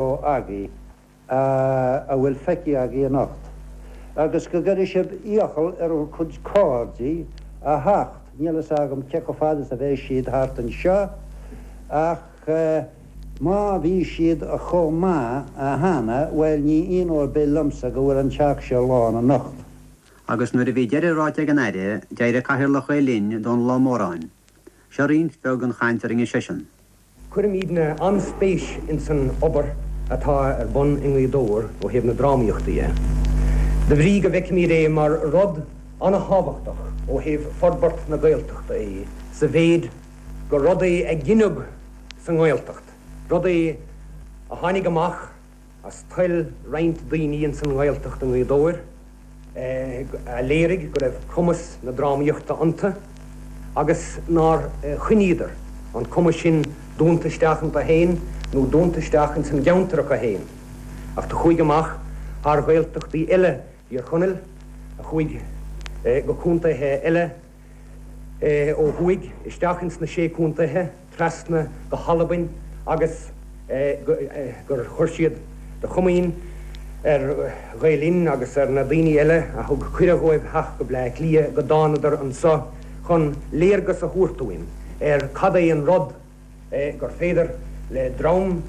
a bhfuil feicthe agaibh anocht. Agus go gcuirfidh sibh iachall ar bhur gcuid cairde a theacht, níl fhios agam cé chomh fada is a bheidh siad thart anseo, ach má bhí siad chomh maith cheana, bhuel ní haon ábhar ar bith liomsa go bhfuil an Teach seo lán anocht. Agus nuair a bhí deireadh ráite ag an Aire, d'éirigh Cathaoirleach Ghael Linn, Dónal Ó Móráin. Seo roinnt bheag den chaint a rinne seisean. Cuirimíd-ne an-spéis ins an obair atá ar bun i nGaoth Dobhair ó thaobh na drámaíochta dhe, de bhrí go bhfeicimíd é mar rud an-thábhachtach ó thaobh forbairt na Gaeltachta dhe sa mhéid gur rud é a gineadh sa nGaeltacht, rud é a tháinig amach, As toil roinnt daoine ins an nGaeltacht i nGaoth Dobhair a léirigh go raibh cumas na drámaíochta iontu agus nár choinníodar an cumas sin dúnta isteach iontu féin nó dúnta isteach ins an gceantar acu féin ach a chuaigh amach thar Ghaeltachtaí eile Thír Chonaill, a chuaigh go contaetha eile ó thuaidh, isteach ins na Sé Contaetha. trasna go hAlbain agus gur chuir siad de chomaoin ar Ghael Linn agus ar na daoine eile a thug cuireadh dhóibh theacht go Bleá Cliath go dtánadar anso chun léargas a thabhairt dúinn ar cad é an rud gur féidir le dream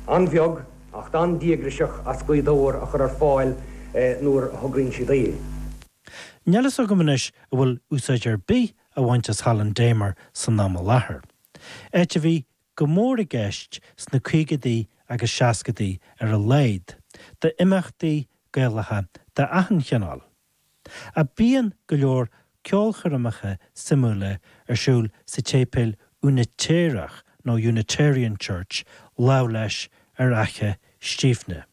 an-bheag ach an-díograiseach as Gaoth Dobhair a chur ar fáil nuair a thograíonn siad é. Níl fhios agam anois a bhfuil úsáid ar bith á bhaint as Halla an Damer san am i láthair, áit a bhí go mór i gceist sna caogaidí agus seascaidí ar a laghad d'imeachtaí Gaelacha d'achan chineál. Bíonn go leor ceolchoirmeacha suimiúla ar siúl sa tséipéal Úinitéireach nó Unitarian Church lámh leis ar fhaiche Stiabhna.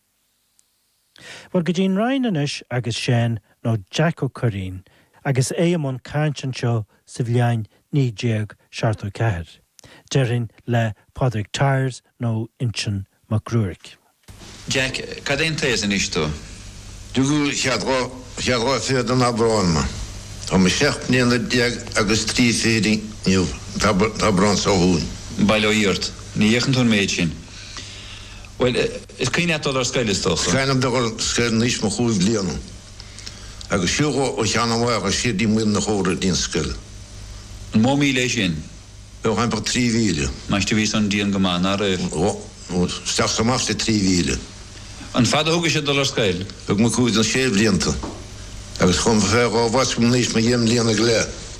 Bhuel, go dtí an Rinn anois agus Seán nó Jack Ó Cuirrín agus é i mbun cainte anseo sa bhliain 1974, déarfainn le Pádraig Tyers nó Uinsionn Mac Ruairc. Jack, cad é an t-aos anois tú? Rugadh mé an ceathrú, ceathrú fichead d'Aibreán mé. Tá mé seacht mbliana déag agus trí fichid inniu, an t-Aibreán seo chugainn. Bail ó Dhia ort, ní fhéachann tú an méid sin. Bhuel. Is cuimhin leat dul ar scoil, is dócha? Chuaigh mé ar scoil in aois mo chúig bliana, agus shiúil ó Cheann an Bhathala go Sírdín Maol na hÓra go dtí'n scoil. An mó míle é sin? Bheadh ann bheadh trí mhíle. Muise bhí san, dian go maith, nach raibh? Ó, isteach is amach trí mhíle. An fada a thugais ag dul ar scoil? Thug mé cúig nó sé bhlianta, agus chuaigh mé fé láimh easpaig in aois mo dheich mbliana go leith.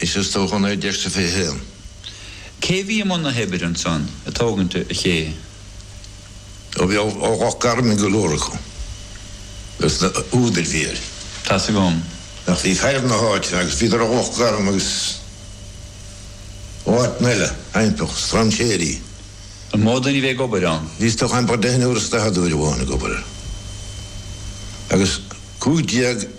Is as do chontae deirtear fé Shéan. Cé a bhí i mbun na h-oibre ansan a tógaint a chéidhe. Do bhí ó Loch Garman go leor acu agus na h-údair bhí air. Tá's agam. Ach bhí fear na h-áite agus bhíodar ó Loch Garman agus ó áiteanna eile, ambaist, Strainséirí. An mó duine a bhí ag obair ann? Bhí is dócha ambaist deichniúr is daichead uair amháin ag obair air agus cúig déag.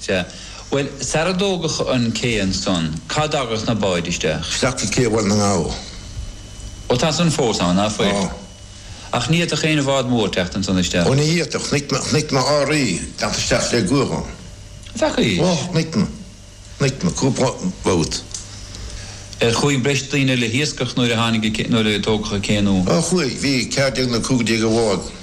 Sea. Bhuel, sarar tógadh an cé ansan, cá dtagadh na báid isteach? Isteach go cé Bhaile na nGall. Ó, tá san fós ann, nach bhfuil? Tá. Ach ní fhéadfadh aon bhád mór teacht ansan isteach. Ó, ní fhéadfadh. Thit na RAAraí leat isteach le guagach ann. An bhfeaca é? Ó, thit na. Thit na, cúpla babhta. Ar chuaigh breis daoine le hiascach nuair a tháinig a, nuair a tógadh a cé nó? Ó, chuaigh. Bhí ceathair déag nó cúigear déag i mbád.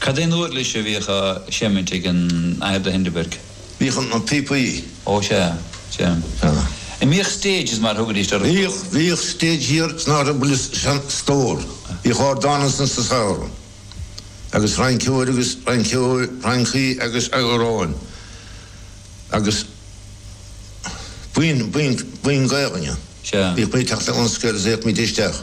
Cad é an úirlis a bhíodh á seimint ag an Athair de Hindeberg? Bhíodh an píopaí. Ó sea, sea. An mbíodh stages mar thugaidís ar an stór? Bhíodh, bhíodh stage thiar sna Rubble is sean stór. Bhíodh ardán ansin sa samhradh. Agus rinceoir agus rinceoir, rincí agus amhráin. Agus buíon, buíon, buíon Gaolainne. Sea. Bhíodh muid ag teacht le ionskirts, théadh muid isteach.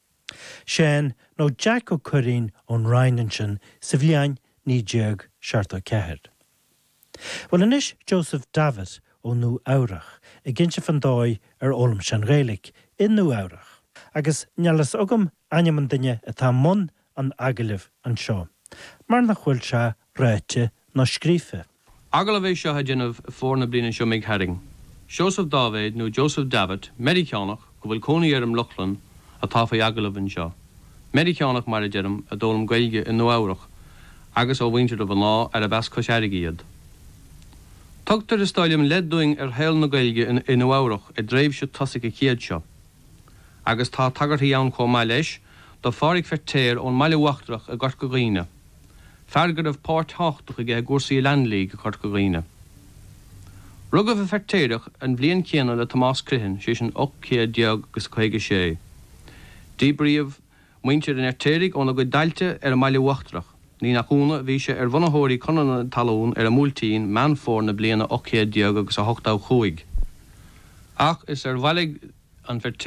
Seán nó Jack Ó Cuirrín ón Rinn ansin sa bhliain 1974. Bhuel anois Joseph Davitt ó Nua Eabhrac ag inse fán dóigh ar fhoghlaim sé an Ghaeilic i Nua Eabhrac. Agus níl a fhios agam ainm an duine atá i mbun an agallaimh anseo mar nach bhfuil sé ráite ná scríofa. Agallamh é seo a deineadh i bhfómhar na bliana seo imigh tharainn. Seosamh Dáibhéid nó Joseph Davitt, Meiriceánach go bhfuil cónaí air i mBrooklyn, atá faoi agallamh anseo. Meiriceánach, mar a deirim, a d'fhoghlaim Gaeilge i Nua-Eabhrac agus ó mhuintir a mhná arbh as Cois Fhairrge iad. Tugtar, is dóigh liom, leid dúinn ar shaol na Gaeilge i Nua-Eabhrac i dtréimhse tosaigh an chéid seo. Agus tá tagairtí ann chomh maith leis do Phádhraic Feirtéar ón mBaile Uachtarach i gCorca Dhuibhne. fear go raibh páirt thábhachtach aige i gcúrsaí a Land League i Corca Dhuibhne. Rugadh an Feirtéarach an bhliain chéanna le Tomás Criomhthain, sé sin 1856. Díbríodh muintir an Fheirtéaraigh óna gcuid tailte ar an mBaile Uachtarach. Ní nach ionadh, bhí sé ar bhunaitheoirí Conradh na Talún ar an mBuailtín, Meán Fómhair na bliana 1885. Ach is ar bhailigh an Feirtéarach,